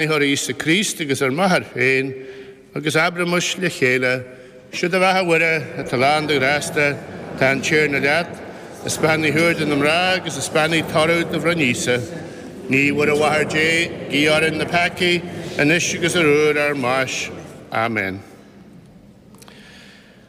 Athair Íosa Críost agus ar m'athair féin, agus abraimis le chéile, Sé do bheatha a Mhuire, atá lán de ghrásta, tá an Tiarna leat, is beannaithe thú idir na mná agus is beannaithe toradh do bhroinn Íosa. A Naomh Mhuire a Mháthair Dé, guigh orainn na peacaigh, anois agus ar uair ár mbáis. Amen.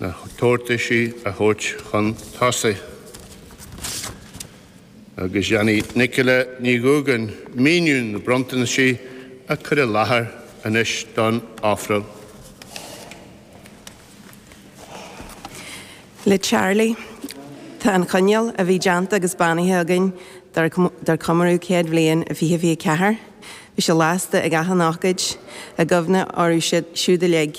na tabhartaisí a thabhairt chun tosaigh agus déanfaidh Nicola Ní Dhúgáin míniú na bronntanaisí a cur i láthair anois don ofráil. Le Charlie, Tá an coinneal a bhí déanta agus beannaithe againn dár comóradh céad bhliain i 2024. Bhí sé lasta ag achan ócáid, i gcuimhne orthu siúd uilig.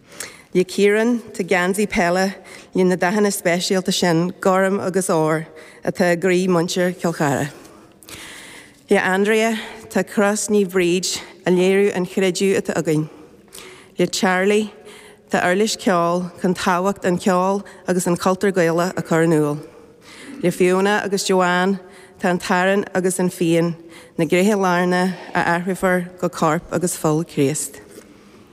Le Ciarán, tá geansaí peile leis na dathanna speisialta sin, gorm agus ór, atá i gcroí muintir Chill Chartha. Le Andrea, tá Cros Naomh Bríd ag léiriú an chreideamh atá againn. Le Charlie, tá uirlis ceoil chun tábhacht an cheoil agus an chultúir Gaelach a chur in iúl. Le Fiona agus Joanne, tá an t-arán agus an fíon, na gréithe lárnach a athrófar go Corp agus Fuil Chríost.